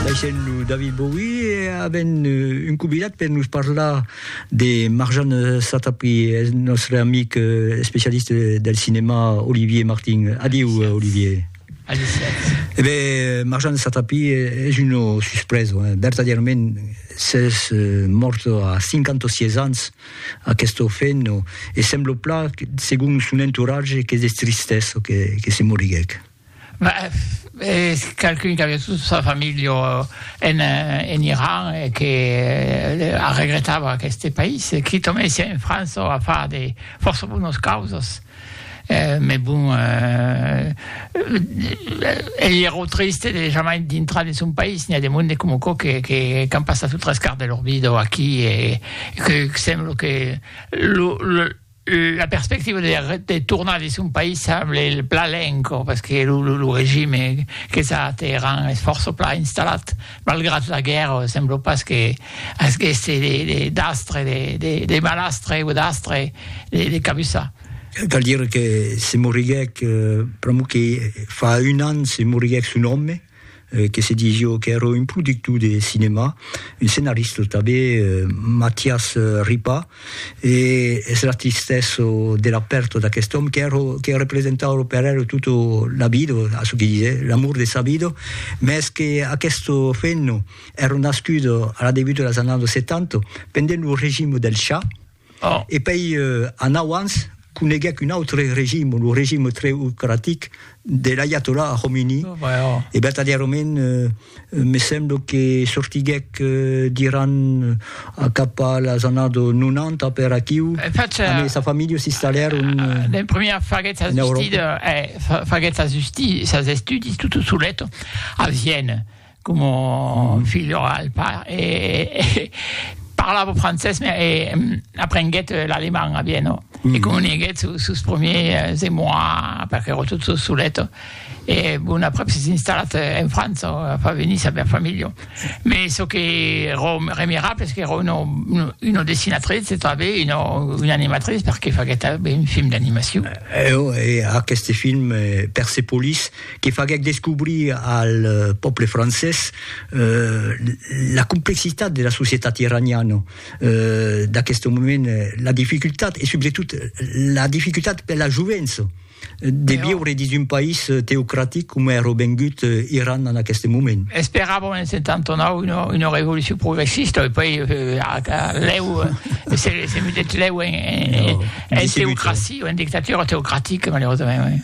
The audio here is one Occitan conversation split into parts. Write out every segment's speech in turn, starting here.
Baissèm lo David Bowie e avèm un convidat per nos parlar de Marjan Satrapi, eth nòstre amic especialista del cinèma Olivier Martin. Adiu, Olivier. Adiu, Sièrs. E ben, Marjan Satrapi es una suspresa, hein, vertadièrament, s'es mòrt a 56 ans, aquesta ofèna, e sembla plan, segon son entoratge, qu'es de tristesa que se moriguèc. Bah, es qualqu'un qu'aviá tota sa familha en Iran e que arregretava aqueste país. Qui tornèsse en França a far de fòrça bonas causas. Mès bon, ei ero triste de jamai dintrar dins son país. N'i a de monde coma aquò qu'an passat lo tres quart de lor vida aquí e que sembla que lo La perspectiva de tornar dins son país semble plan lenca, pas que lo regime qu'es a Teheran es fòrça plan installat, malgrat la guèrra sembla pas que asgèsse d'astre, de malastre o d'astre de cabussar. Cal dire que se moriguèc pr'amor que fa un an se moriguèc son òme, que se dís jo qu'èra un productor de cinèma, un scenarista tanben, Matias Ripa, e es la tristesa de la pèrta d'aquest òme qu'èra, que representava per el tota la vida, a çò que disè, l'amor de sa vida, mès que aquesta femna èra nascuda a la debut de las annadas 70, pendent lo regime del Shah, E pei anau ans coneguec un autre regime, lo regime treocratic de l'aiatollah Khomeini, e vertadièrament me semblo que sortiguec d'Iran cap a las annadas 90 per aquiu, amb sa familha s'installèron en Euròpa. Como filho al par e parlava francés me e aprenguèt l'aleman a Viena e comuniguèt su sus premiers émois perque ero tot so solet e bon aprèp s'es installat en França a far venir sa bèl familha me çò que ero remirable es qu'ero uno una dessinatrice e tanben una una animatrice perque faguèt tanben un film d'animacion. Eo e aqueste film Persepolis. que faguèc descobrir al pòble francés la complexitat de la societat iraniana d'aqueste moment, la dificultat e subretot la dificultat per la jovença de viure dins un país teocratic coma èra vengut Iran en aqueste moment. Esperàvem en 79 una, una revolucion progressista e poi lèu se, se metèt lèu en, en, en teocracia, en dictatura teocratica, malerosament.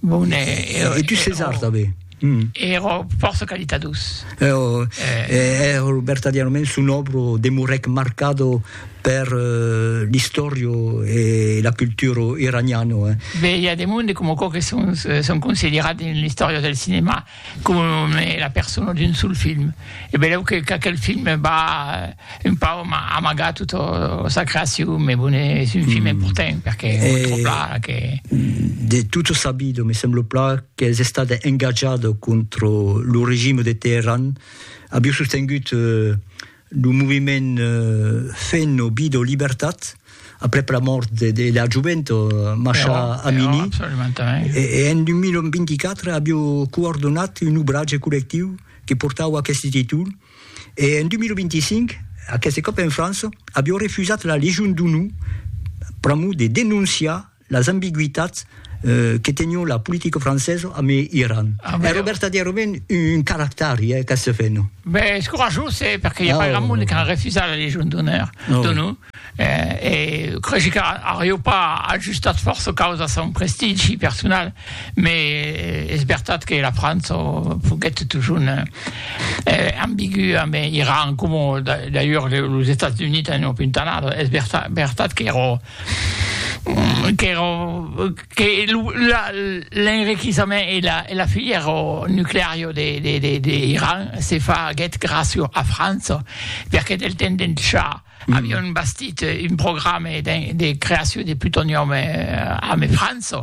Bon, e... E tu César tanben? Ero fòrça qualitadós. Ero vertadièrament son òbro demorèc marcado per l'istòria e la cultura iraniana. Be, i a de monde coma quò que son considerat dins l'istòria del cinema. Com es la persona d'un sol film. E beleu que qu'aquel film va un pauc amagar tota sa creacion, me bon es un film important perque montre pla que. De tot sabido, me sembla pla qu'es estat engatjat contra lo regime de Teheran, aviu sostengut Lo moviment Fenn o Bid o Libertat, aprèp la mòrt de de la jovent Masha Amini, e en 2024 avió coordonat un obratge collectiu que portava aqueste títol, e en 2025, aqueste còp en França, avió refusat la Legion d'Onor pr'amor de denonciar Las ambigüitats que tenion la politica francesa amb Iran. Èra vertadièrament un caractari, eh, qu'ac fèno. Ben, es corajós, eh, perque i a pas grand monde qu'a refusat la Légion d'Honneur d'ONU. E cregi qu'arió pas ajustat fòrça caus a son prestigi personal, mais es vertat que la França foguèt totjorn ambigü amb Iran, coma d'ailleurs los Estats Units an apuntalat. Es vertat qu'èra qu'èra que l'enriquissament e la filièra nucleària de l'Iran se faguèt gràcia a França, perque del temps d'en Shah avián bastit un programe de creacion de plutonium amb França,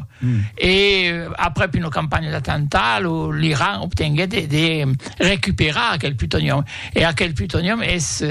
e aprèp una campanha d'atemptat l'Iran obtenguèt de recuperar aquel plutonium. E aquel plutonium es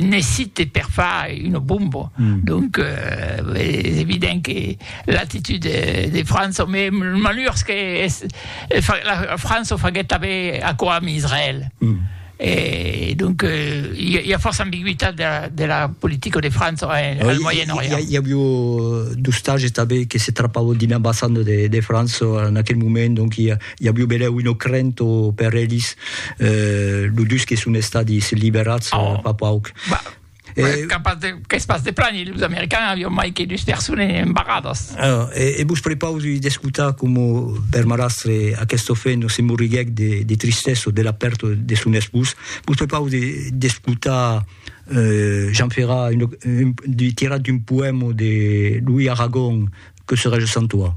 necite per far una bomba. Mm. Donc, euh, es evident que l'actitud de, de França, mais malheurs que es, la França faguet tanben aquò amb Israël. Mm. Et donc, euh, il y, y, a força ambiguïtat de la, de la politica de França en, oui, al Moyen-Orient. Il y, y aviu euh, d'ostages tanben que se trapavan dins l'ambassanda de, de França en aquel moment, donc il y a, I a Biubelèu un ocrènt o per elis, lo dus que son estadis liberats fa pauc. Qu'es pas de plan, los americans avion mai que dus persones embarradas. E vos prepausi d'escotar coma per marrastre aqueste ofèno se morriguèc de tristèso de la pèrta de son espós. Vos prepausi d'escotar Jean Ferrat tirat d'un poèma de Louis Aragon que serai je sans toi.